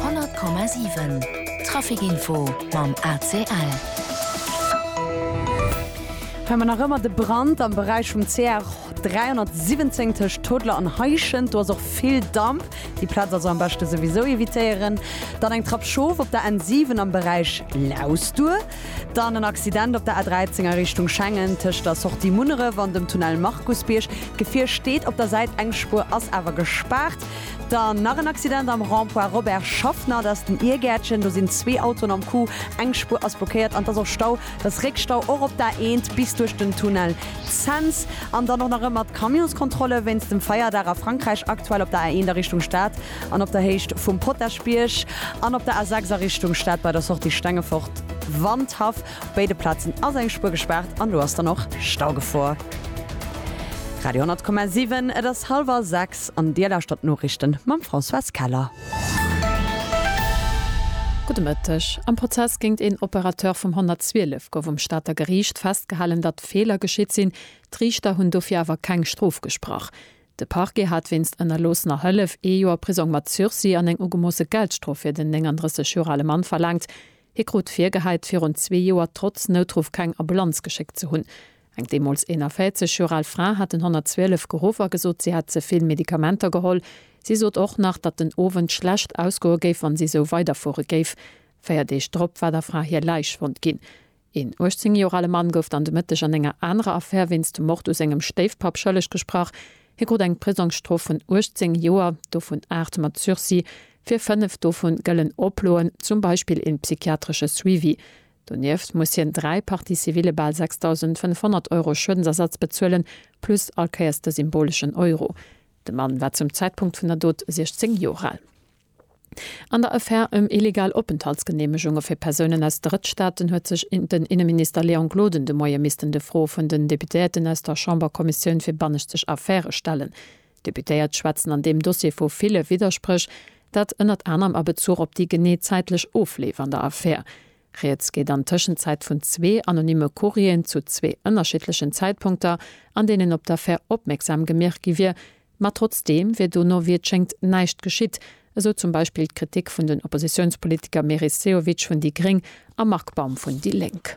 100,7 Traficinfo mam ACL. Hei mer nach ëmmer de Brand am Beräich vum CR 317 tëscht Toodler an Heischent. Do ass och vill Damp. Déi Plaz also am beschte souwisou evitéieren. Dann eng Trapp schof op der N7 am Beräich Lausduer. Dann en Accident op der A13 a Richtung Schengen tëscht der Sortie Munneref an dem Tunnel Markusbierg. D'Gefier steet op der Säit, eng Spuer ass awer gespaart. Dann nach en Accident am Rond-point Robert Schaffner, dat ass den Iergäertchen. Do sinn zwee Autoen am Coup, eng Spuer ass blockéiert an et ass och Stau. Et ass Réckstau och op der A1 bis duerch den Tunnel Cents. An dann och nach ëmmer d'Camionskontrolle wéinst dem Feierdag a Frankräich, aktuell op der A1 a Richtung Stad an op der Héicht vum Potaschbierg an op der A6 a Richtung Stad bei der Sortie Stengefort-Wandhaff. Op béide Plazen ass eng Spuer gespaart an do ass dann och Staugefor. Radio 10,7 Et ass hallwer 6 an Dir lauschtert d'Noriichten mam Françoise Keller. Gudde Mëtteg. Am Prozess géint een Operateur vum 112 gouf um Stater Geriicht festgehalen, datt Feeler geschitt sinn. D'Riichter hunn dofir awer keng Strof gesprach. De Parquet hat wéinst ënnerloossener Hëllef ee Joer Prisong mat Sursis an eng ugemoosse Geldstrof fir den 39 Joer ale Mann verlaangt. Hie krut virgehäit, virun zwee Joer trotz Noutruff keng Ambulanz geschéckt ze hunn. Eng deemools 41 Joer al Fra hat den 112 geruff a gesot, si hätt ze vill Medikamenter geholl. Si sot och nach, datt den Owend schlecht ausgoe géif, wann si esou weiderfuere géif. Véier Deeg drop war der Fra hir Läich fonnt ginn. Een 18 Joer ale Mann gouf dann de Mëtteg an enger anerer Affär wéinst dem Mord u sengem Stéifpapp schëlleg gesprach. Hie krut eng Prisongsstrof vun 18 Joer, dovun aacht mat Sursis. Fir fënnef dovun gëllen Oploen, zum Beispill een psychiatresche Suivi. Donieft muss hien dräi Parties civile bal 6.500 Euro Schuedensersatz bezuelen, plus allkéiers de symboleschen Euro. De Mann war zum Zäitpunkt vun der Dot 16 Joer al. An der Affär ëm illegal Openthaltsgeneemegunge fir Persounen aus Drëttstaaten huet sech den Inneminister Léon Gloden de Moie missten de Froe vun den Deputéierten aus der Chamberkommissioun fir bannëschtlech Affäre stellen. D'Deputéiert schwätzen an deem Dossier vu ville Widderspréch, dat ënnert anerem a Bezuch op déi genee zäitlech Ofleef an der Affär. Rieds geet an Tëschenzäit vun zwee anonyme Courrieren zu zwee ënnerschiddlechen Zäitpunkter, an deenen op d'Affär opmierksam gemierkt gi wier, ma trotzdeem wier dono, wéi et schéngt, näischt geschitt, esou zum Beispill d'Kritik vun den Oppositiounspolitiker Meris Sehovic vun déi gréng a Marc Baum vun déi lénk.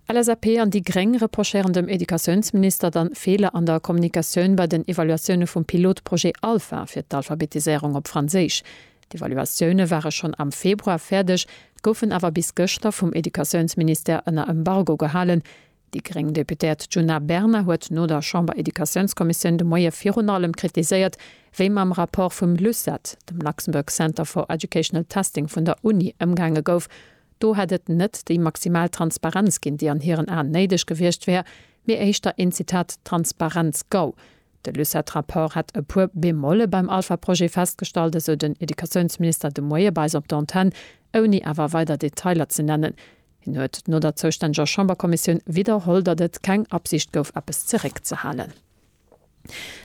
LSAP an déi gréng reprochéieren dem Educatiounsminister dann Feeler an der Kommunikatioun bei den Evaluatioune vum Pilotprojet ALPHA fir d'Alphabetiséierung op Franséisch. D'Evaluatioune ware schonn am Februar fäerdeg, goufen awer bis gëschter vum Educatiounsministère ënner Embargo gehalen. Déi gréng Deputéiert Djuna Bernard huet no der Chamber-Educatiounskommissioun de Moie virun allem kritiséiert, wéi mam Rapport vum LUCET, dem Luxembourg Center for Educational Testing vun der Uni, ëmgaange gouf, Do hätt et net déi maximal Transparenz ginn, déi an hiren Aen néideg gewiescht wär, mee éischter een, Zitat, Transparenz-Gau. De Lucet-Rapport hätt e puer Bemolle beim Alpha-Projet festgestallt, esou den Educatiounsminister de Moie bei eis op der Antenn, ouni awer weider Detailer ze nennen. Hien huet no der zoustänneger Chamberkommissioun widderholl, datt et keng Absicht gouf, eppes zeréckzehalen.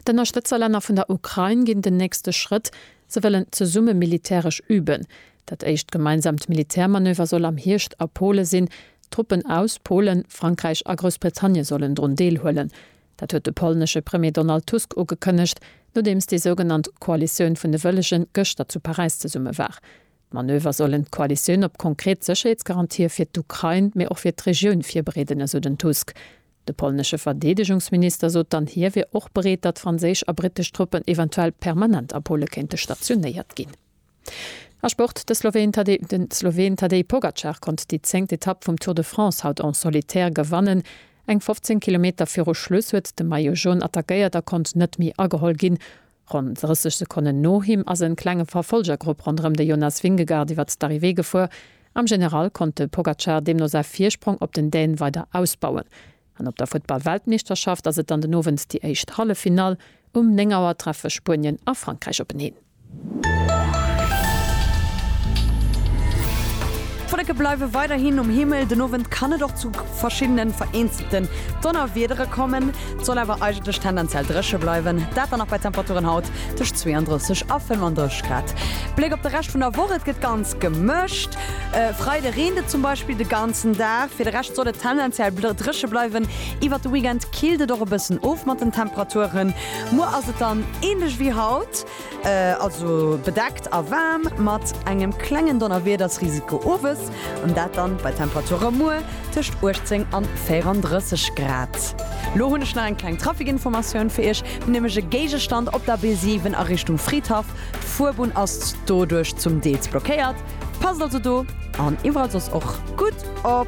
D'Ënnerstëtzerlänner vun der Ukrain ginn den nächste Schrëtt, se wëllen zesumme militäresch üben. Dat éischt gemeinsaamt Militärmanöver soll am Hierscht a Pole sinn. Truppen aus Polen, Frankräich a Groussbritannien sollen drun deelhuelen. Dat huet de polnesche Premier Donald Tusk ugekënnegt, nodeems déi sougenannt Koalitioun vun de Wëllegen gëschter zu Paräis zesumme war. D'Manöver sollen d'Koalitioun op konkret Sécherheetsgarantië fir d'Ukrain, mee och fir d'Regioun virbereeden, esou den Tusk. De polnesche Verdeedegungsminister sot dann, hie wier och bereet, datt franséisch a brittesch Truppen eventuell permanent a Pole kéinte stationéiert ginn. A Sport, De Sloween Tadej Pogacar konnt déi zéngt Etapp vum Tour de France haut en solitaire gewannen. Eng 15 Kilometer viru Schluss huet de Maillot Jaune attackéiert a konnt net méi ageholl ginn. Ronn 30 Sekonnen no him ass en klenge Verfolgergrupp ronderëm de Jonas Vingegaard iwwert d'Arrivée gefuer. Am General konnt de Pogacar deemno säi Virsprong op den Däne weider ausbauen. An op der Futtball-Weltmeeschterschaft ass et dann den Owend déi éischt Halleffinall. Um 9 Auer treffe Spuenien a Frankräich openeen. D'Wolleke bleiwe weiderhin um Himmel. Den Owend kann et och zu verschiddene vereenzelte Donnerwiedere kommen. Et soll awer eigentlech tendenziell dréche bleiwen, dat dann nach bei Temperaturen haut tëscht 32 a 35 Grad. Bléck op de Rescht vun der Woch, Et gëtt ganz gemëscht, e Freide reent et zum Beispill de ganzen Dag. Fir de Rescht soll et tendenziell dréche bleiwen. Iwwert de Weekend killt et och e bëssen of mat den Temperaturen. Muer ass et dann änlech wéi haut. Also bedeckt a waarm mat engem klengen Donnerwiedersrisiko owes, an dat dann bei Temperature muer tëscht 18 an 34 Grad. Lo hunn ech nach eng kleng Trafikinformatioun fir Iech, nämlech e Géigestand op der B7 a Richtung Fridhaff. D'Fuerbunn ass doduerch zum Deels blockéiert, passt also do an iwwerall soss och gutt op.